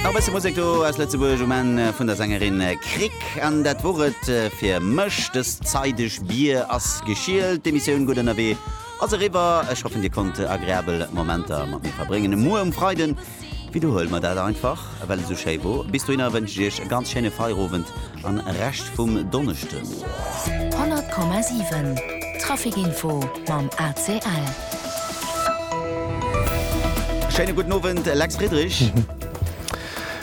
Nach e bësse Musek do aus Lëtzebuerg um Enn vun der Sängerin Krick. An dat wor et fir mech dës Zait. Dech Bier ass geschielt. D'Emissioun Gutt Ënnerwee ass eriwwer. Ech hoffen, Dir konnt agreabel Momenter mat mir verbréngen. Muer um Freiden widderhuele mer dat einfach, well et esou schéi wor. Bis dohinner wënsche ech Iech e ganz schéine Feierowend. An Rescht vum Donneschden. 100,7 Traficinfo mam ACL. Schéine gudden Owend, Lex Friedrich.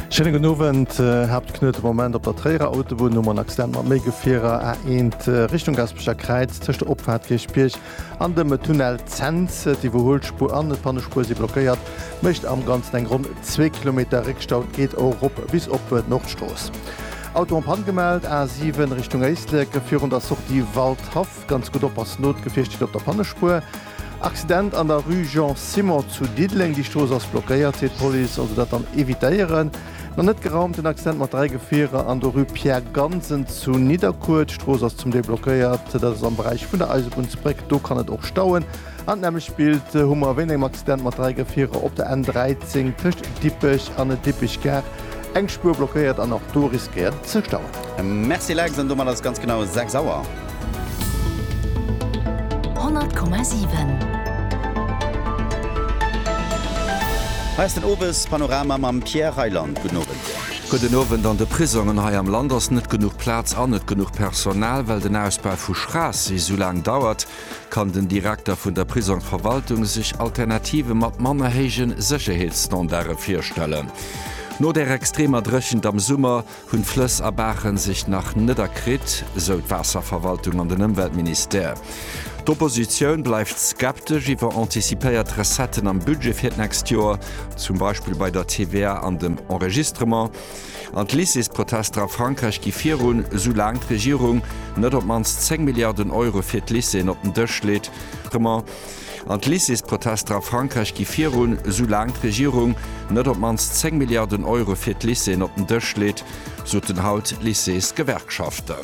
Schéine gudden Owend. Haaptknuet de Moment op der Tréierer Autobunn nom en Accident mat méi Gefierer, A1 Richtung Gaspeger Kräiz, tëscht der Opfahrt Kierchbierg An dem Tunnel Cents, d'Iwwerhuelspuer an d'Pannespuer si blockéiert, mécht am Ganzen eng ronn zwee Kilometer Réckstau. Et geet och erop bis op d'Nordstrooss. Auto en Panne gemellt, A7 Richtung Éislek virun der Sortie Waldhaff. Ganz gutt oppassen, no d'Gefier steet op der Pannespuer. Accident an der Rue Jean Simon zu Diddeleng, déi Strooss ass blockéiert, seet d'Police, also dat dann evitéieren. Nach net geraumt, den Accident mat 3 Gefierer an der Rue Pierre Gansen zu Nidderkuer. D'Strooss ass zum Deel blockéiert, dat ass am Beräich vun der Eisebunnsbréck, do kann et och stauen. An d'nämmlecht Bild hu mer wéint engem Accident mat 3 Gefierer op der N13 tëscht Dippech an der Dippech Gare, eng Spuer blockéiert an och do riskéiert et ze stauen. Merci Lex, an domat ass et ganz genau 6 Auer. 100,7. Hei ass den Owes Panorama mam Pierre Reyland. Gudden Owend. Gudden Owend. An de Prisongen hei am Land ass net genuch Plaz an net genuch Personal. Well den Ausbau vu Schraassee esou laang dauert, kann den Direkter vun der Prisongsverwaltung sech Alternative mat manner héije Sécherheetsstandarde virstellen. No der extremer Dréchent am Summer Hunn d'Flëss a Baachen sech nach net erkritt, sou d'Waasserverwaltung an den Ëmweltministère. D'Oppositioun bleift skeptesch iwwer antizipéiert Recetten am Budget fir d'nächst Joer, zum Beispill bei der TVA an dem Enregistrement. An d'Lycées-Protester a Frankräich gi virun, sou laang d'Regierung net op d'mannst 10 Milliarden Euro fir d'Lycéeën op den Dësch leet. An d'Lycéesprotester a Frankräich gi virun, esou laang d'Regierung net op d'mannst 10 Milliarden Euro fir d'Lycéeën op den Dësch leet, soten haut d'Lycéesgewerkschaften.